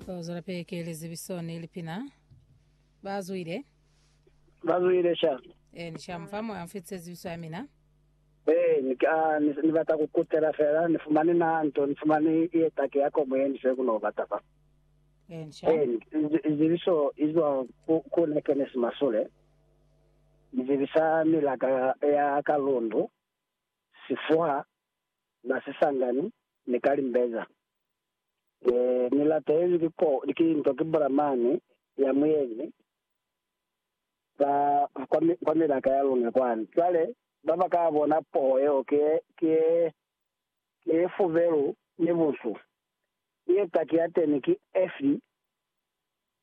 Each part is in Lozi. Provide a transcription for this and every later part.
Tozwela pili ki lizibiso ni lipina. Ba zwile. Ba zwile sha. E, ni sha mufa moya mfitise zibiso ya mina. Ee, ni ka, ni, ni bata ku kutela fela, ni fumane na nto, ni fumane ye taki ya kobo ye ni se ku no bata fa. E, ni sha. Ee, ni- izi- izibiso izwa ku, ku ne ke ne si masule. Izibisa milaka ya, ya kalundu, sifuha, na sisangani ni kalimbeza. Ni, ni latelezwi ki ko, ki nto ki Bulamani ya muyeñi kwa, kwa, kwa milaka ya luna kwani. Cwale, ba ba ka bona poho yeo ki ye, ki ye, ki ye fubelu ni bunsu. Ki ye taki ya teni ki Efi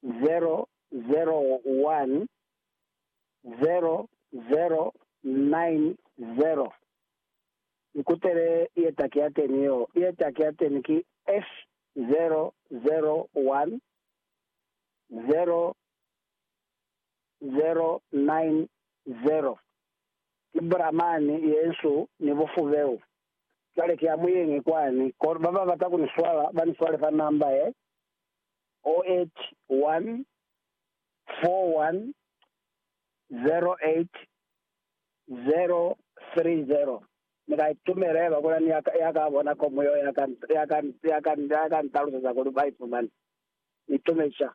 0, 0, 1, 0, 0, 9, 0. Ikutele ietaki yateni yo. Ietaki yateni ki H0010090. Ki Brahman yensu ni bufubeu. Cwale ki amuyengi kwani. Kono baba bata kuniswala baniswale fa namba ye, 0814108000. 030 Ni ka itumela haiba kuna ni ya ka bona komu yeo ya ka ntaluseza kuli ba ifumani. Ni tume ca.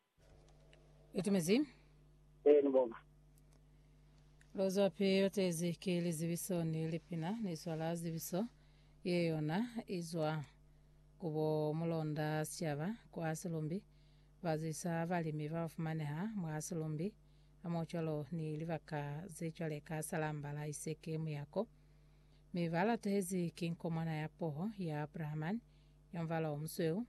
Itumezi. Ee, ni bonga. Lozwapi lotezi ki lizibiso ni lipina ni swala zibiso ye yona izwa ku bo mulonda sicaba kwa silumbi ba zwisa balimi ba ba fumaneha mwa silumbi hamohocwalo ni libaka zecwale ka Salamba la Iseke muyako, mi balatuhezi ki nkomwana ya poho ya Abrahamani, ya mubala omusweu,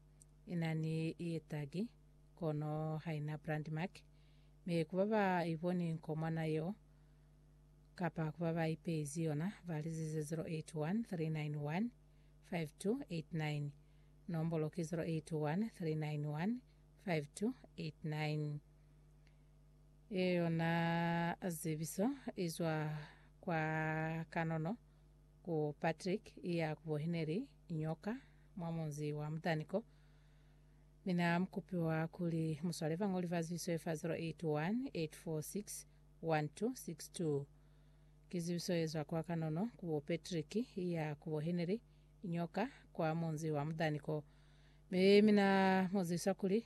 inani yetagi, kono haina brand mark. Mi ku baba iboni nkomwana yeo, kapa ku baba ipeizi yona, balizize 0813915289, nombolo ki 0813915289. Ye yona zebiso izwa kwa kanono ku Patrick iya kubo hineli nyoka mwa munzi wa mutani ko. Mina mukupiwa kuli muswale bangoli ba zibiso ye fa 0818461262. Ki zibiso yezwa kwa kanono kubo Patrick iya kubo hineli nyoka kwa munzi wa mutani ko. Mi mina muzisa kuli